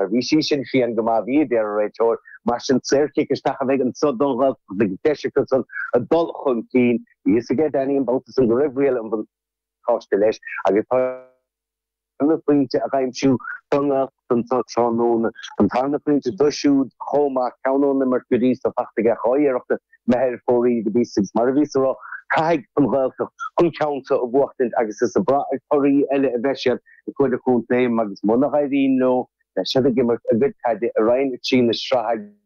Mar bhí sí sin fiain go maith, bhí, a deir an réiteoir. Mar sin, saorchic isteach a bheidh anseo don Ghaeltacht agus deis acu san a dul chun cinn. Bhí fhios ag Ed Eaney an babhta san go raibh riail an bhuntáiste leis agus tá sé chun an tarna phointe a aimsiú don nGaeltacht anseo tráthnóna. An tarna phointe do siúd chomh maith, ceann ón imirt go dtí seo. Faighte aige dhá iarracht imithe ar fóraoil go dtí sin. Mar a bhíos a rá, caithfidh an Ghaeltacht an ceann seo a bhuachtaint agus is ag brath ar thorthaí eile a bheidh siad. ar fuaid an chontae agus muna h-éiríonn leo beidh siad ag imirt a gcuid caide i Roinn 3 na Sraithe agus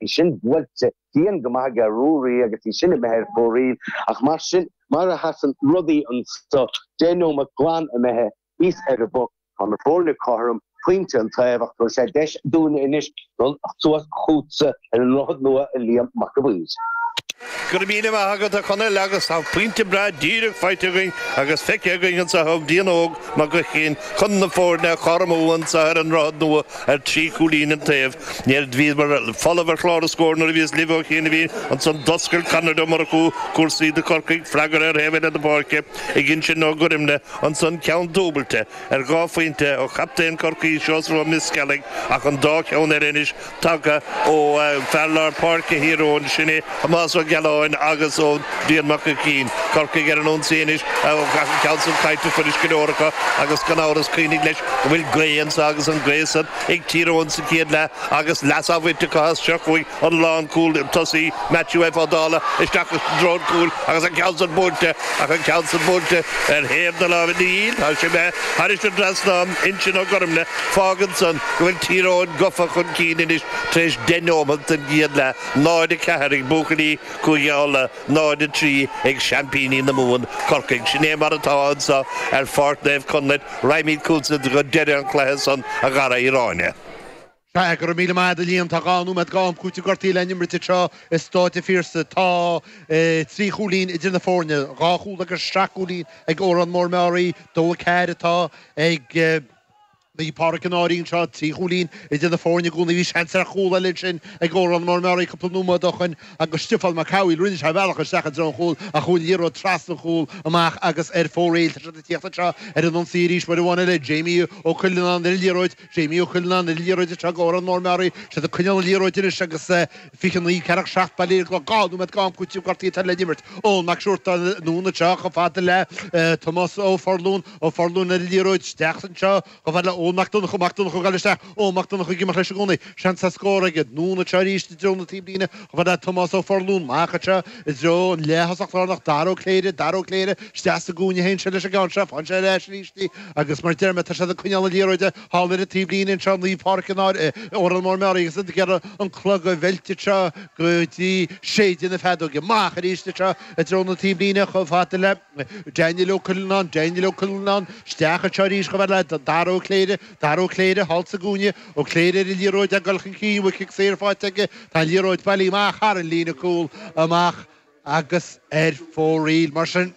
í sin buailte dian go maith aige Ruaidhrí agus í sin imithe ar fóraoil ach mar sin mar a sheasann rudaí annso deich nóimeat glan imithe thíos ar an bpoc tá na fóirne cothrom. pointe an taobh ach tabharfaidh sé deis dúinne anois dul suas chútsa ar an nDroichead Nua a Liam Mac an Mhaoir. Go raibh míle maith agat, a Chonaill, agus tá pointe breá díreach faighte againn agus feicthe againn anseo ag Brian Óg Mac Uiginn chun na foirne a chothromú anseo ar an nDroichead Nua ar trí chúilín an taobh. Mar bhíomar folamh ar chlár an scóir nuair a bhíos libh ó chianaibh ansan. D'oscail Conor Ó Murchú cúrsaí do Corcaigh, freagartha ar thaobh eile na páirce ag Uinsionn Ó Gormlaigh ansan, ceann dúbailte. ar dhá phointe ó chaptaen Chorcaí, Seosamh Ó Mioscealaigh, ach an dá cheann eile anois tagtha ó fear lár páirce Thír Eoghain, sin é Tomás Ó Gealáin agus ó Bhrian Mac Uiginn. Corcaigh ar an ionsaí anois, ach an ceann san caillte fuiris go leor acu agus gan amhras cuimhnigh leis go bhfuil gaoth anso agus an gaoth san ag Tír Eoghain sa chéad leath agus leas á bhaint acu as. Seo chugainn. an lánchúl tosaigh Matthew F Ó Dálaigh isteach i dtreo an chúil agus an ceann san buailte ach an ceann san buailte ar thaobh na láimhe ní hea tá sé imithe thairis an dtrasnán Uinsionn Ó Gormlaigh fágann san go bhfuil Tír Eoghain gofa chun cinn anois tar éis deich neomat den gcéad leath 0-4 ag buachaillí Chúige Uladh 0-3 ag seaimpíní na Mumhan Corcaigh sin é mar atá annso ar Pháirc Naomh Conlaith rachaimíd chútsa go deireadh an cluiche san a Dhara Uí Ráinne. Tá, go raibh míle maith agat, a Liam. Tá dhá nóiméad d'am cúitimh gortaí le n-imirt anseo i Staid a' Phiarsaigh. Tá trí chúilín idir na foirne, dhá chúl agus seacht gcúilín ag Órán Mór-Meáraí. Dó a ceathair atá ag Naomh Pádraic an Fhairche anseo, trí chúilín idir na foirne i gcónaí. Bhí seans ar chúl eile ansin ag Órán Mór-Meáraí cúpla nóiméad ó shoin agus Stiofán Mac Cathmhaoil, rinne sé a bhealach isteach i dtreo an chúil ach chuaigh an liathróid trasna an chúil amach agus ar fóraoil. Tá siad ag tíocht anseo ar an ionsaí arís, uair amháin eile, Jamie Ó Cuilleanáin ar an liathróid. Jamie Ó Cuilleanáin ar an liathróid anseo d'Órán Mór-Meáraí. Siad ag coinneáil an liathróid anois agus 29 ceathracha 7 bailithe ar an gclog. Dhá nóiméad d'am cúitimh gortaí atá le n-imirt. Eoin Mac Siúrtáin, anonn anseo chomh fada le Tomás Ó Forlún. Ó Forlún ar an liathróid. Isteach anseo chomh fada le Eoin Mac Donncha. Mac Donncha ag goil isteach. Eoin Mac Donncha ag imeacht leis i gcónaí. Seans ar scór aige, anonn anseo arís i dtreo na taobhlíne chomh fada le Tomás Ó Forlún. Amach anseo. i dtreo an leath-thosach lárnach, Dara Ó Cléire, Dara Ó Cléire, isteach sa gcúinne a théann sé leis an gceann seo, faigheann sé ar ais arís í, agus mar deir mé tá siad ag coinneáil na liathróide thall ar an taobhlíne anseo i Naomh Pádraic an Fhairche, Órán Mór Meáraí agus iad ag iarraidh an clog a mheilt anseo go dtí séideadh na feadóige. Amach arís anseo i dtreo na taobhlíne chomh fada le. Daniel Ó Cuilleanáin, Daniel Ó Cuilleanáin, isteach anseo arís chomh fada le Dara Ó Cléire, Dara Ó Cléire, thall sa gcúinne, Ó Cléire ar an liathróid ag dul chun cinn, uaidh cic saor faighte aige, tá an liathróid bailithe amach thar an líne cúil, amach agus ar fóraoil. Mar sin,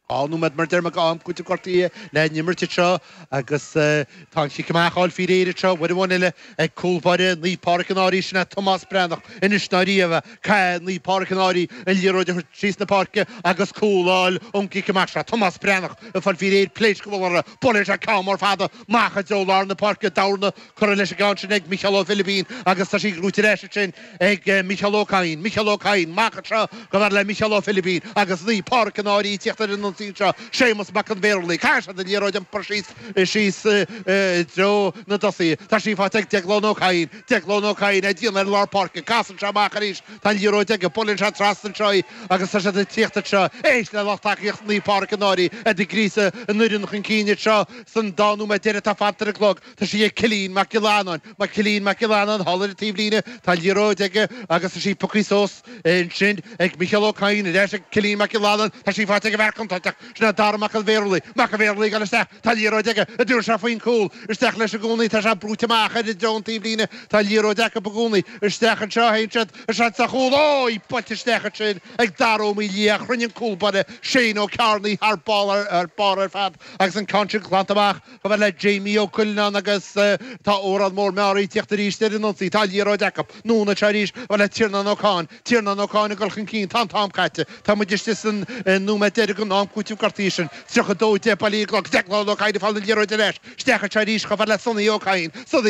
dhá nóiméad mar a deir mé d'am cúitimh gortaithe le n-imirt anseo agus tá an cic amach á fháil faoi réir anseo, uair amháin eile, Ag cúl báire Naomh Pádraig an Fhairche sin é Tomás Breathnach anois nó riamh é. Caithfidh Naomh Pádraig an Fhairche an liathróid a thabhairt síos na páirce agus cúl a fháil ón gcic amach seo. Tomás Breathnach ag fáil faoi réir pléasc a bhualadh uirthi. Buaileann sé ceann mór fada amach i dtreo lár na páirce. Dorna curtha leis an gceann sin ag Micheál Ó Philibín agus tá sí buaite ar ais ansin ag Micheál Ó Cadhain. Micheál Ó Cadhain amach anseo chomh fada le Micheál Ó Philibín agus Naomh Pádraig an Fhairche ag tíocht ar an ionsaí anseo. Séamus Mac an Mhéarlaigh. Caithfidh siad an liathróid a iompar síos. síos i dtreo na dtosaithe. Tá sí faighte ag Déaglán Ó Cadhain. Déaglán Ó Cadhain ag déanamh ar lár páirce. Casann sé amach arís. Tá an liathróid aige. Buaileann sé trasna anseo í agus tá siad ag tíocht anseo. Éist le lucht tacaíochta Naomh Pádraig an Fhairche iad ag gríosadh an fhoireann chun cinn anseo san dá nóiméad deireadh atá fanta ar an gclog. Tá sí ag Cillín Mac Gill-Eanáin. Mac Cillín Mac Gill-Eanáin thall ar an taobhlíne. Tá an liathróid aige agus tá sí pioctha suas ansin ag Micheál Ó Cadhain. Ar ais ag Cillín Mac Gill-Eanáin. Tá sí faighte ag an bhfear contráilteach. Sin é Dara Mac an Mhéarlaigh. Mac an Mhéarlaigh ag gabháil isteach. Tá an liathróid aige. An dtabharfaidh sé faoin cúl. Isteach leis i gcónaí. Tá sé brúite amach ar i dtreo an taobhlíne. Tá an liathróid acu i gcónaí. Isteach anseo a théann siad. A seans ar chúl. Ói! Buailte isteach ansin ag Daragh Ó Maoildhia. Chruinnigh an cúl báire, Shane Ó Ceárnaigh, thar barr ar fad agus an ceann sin glanta amach. Chomh fada le Jamie Ó Cuilleanáin agus tá Órán Mór Meáraí ag tíocht arís ar an ionsaí. Tá an liathróid acu. Anonn anseo arís. Chomh fada le Tiarnán Ó Catháin. Tiarnán Ó Catháin ag dul chun cinn. Tá an t-am caite. Tá muid istigh san nóiméad deiridh den am cúitimh gortaithe sin. 32 10 bailithe ar an gclog. Déaglán Ó Cadhain ag fáil an liathróid ar ais. Isteach anseo arís chomh fada le Sonny Ó Cadhain. Sonny Ó.